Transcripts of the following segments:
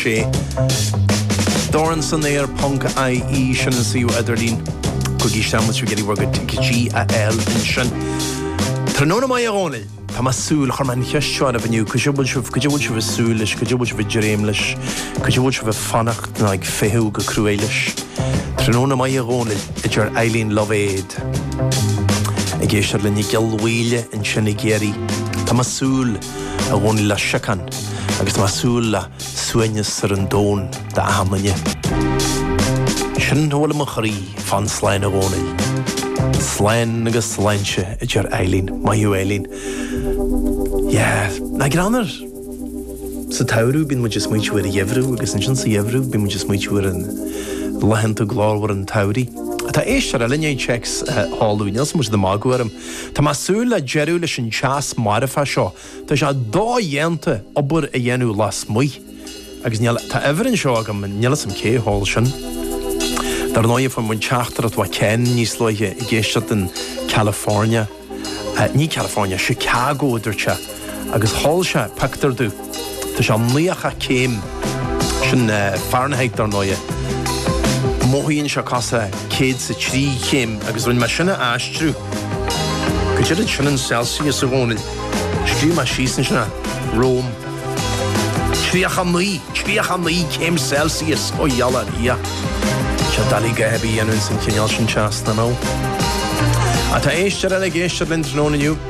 sé. Dorn san Aer ponc ie sin an suíomh idirlín Coicís Sandwich Spaghetti We're Good to GAL ansin. Tráthnóna maith a Dhónaill! Tá mé ag súil chuir mé an cheist seo oraibh inniu, caidé a bhfuil sibh, caidé a bhfuil sibh ag súil leis, caidé a bhfuil sibh ag dréim leis, caidé a bhfuil sibh ag fanacht nó ag feitheamh go crua leis? Tráthnóna maith a Dhónaill, a deir Eileen Lovaid ag éisteacht linn i gCill Mhaoile ansin i gCiarraí. Tá mé súil. a Dhónaill, le síocháin agus tá mé ag súil le suaimhneas ar an domhan d'achan duine. Sin a bhfuil i mo chroí. Fan slán, a Dhónaill. Slán agus sláinte, a deir Eileen. Maith thú, Eileen. Yeah. Nach greannmhar! Sa tsamhradh bíonn muid ag smaointiú ar an gheimhreadh agus ansin sa gheimhreadh bíonn muid ag smaointiú ar an laethanta glórmhar, an tsamhraidh. Tá éisteoir eile i ndiaidh téacs a sheoladh chugainn, níl a fhios agam, níl muid ag magadh orm. Tá mé ag súil le deireadh leis an teas marfa seo, tá sé dodhéanta obair a dhéanamh lasmuigh agus níl, tá uimhir anseo agam, níl 'fhios a'm cé a sheol sin. Dar ndóigh fuair muid teachtaireacht ó Ken níos luaithe ag éisteacht in California, ní California, Chicago a dúirt sé. agus sheol sé pictiúr domh. Tá sé nócha céim. Sin Fahrenheit dar ndóighe. Mothaíonn sé cosúil le 103 céim agus rinne mé sin a aistriú go dtí, caidé sin in Celsius i gcónaí. Scríobh mé síos anseo é romham. 39! 39 céim Celsius! Ó gheall ar Dhia. Tá sé doiligh a dhath ar bith a dhéanamh ins an chineál sin teas, you know. Tá éisteoir eile ag éisteacht linn tráthnóna inniu.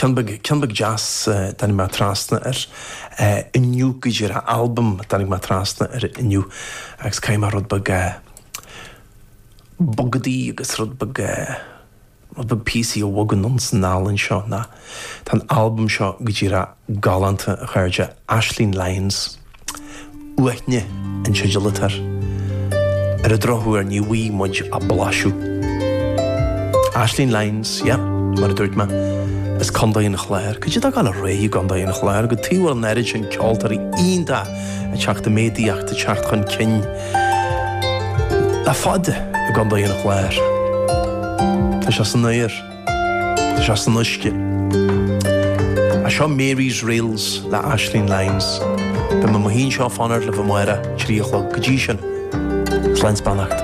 Ceann beag deas tháinig mé trasna air inniu, go díreach, albam a tháinig mé trasna air inniu agus caithfidh mé rud beag bogadaigh agus rud beag, rud beag píosaí a bhogadh anonn 's anall anseo nó tá an albam seo go díreach, galánta, a chairde, Aisling Lyons. Uaithne an teideal atá air. Ar an drochuair, ní bhfuighidh muid ach blaiseadh. Aisling Lyons, yep, mar a dúirt mé, as Condae an Chláir. Caidé atá ag gabháil ar aghaidh i gCondae an Chláir, cad chuige a bhfuil an oiread sin ceoltóirí iontacha ag teacht i méadaíocht, ag teacht chun cinn, le fada, i gCondae an Chláir. Tá sé san aer. Tá sé san uisce. Seo Mary's Reels le Aisling Lyons. Beidh mé i mo shuí anseo ag fanacht libh amárach, trí a chlog. Go dtí sin, slán 's beannacht.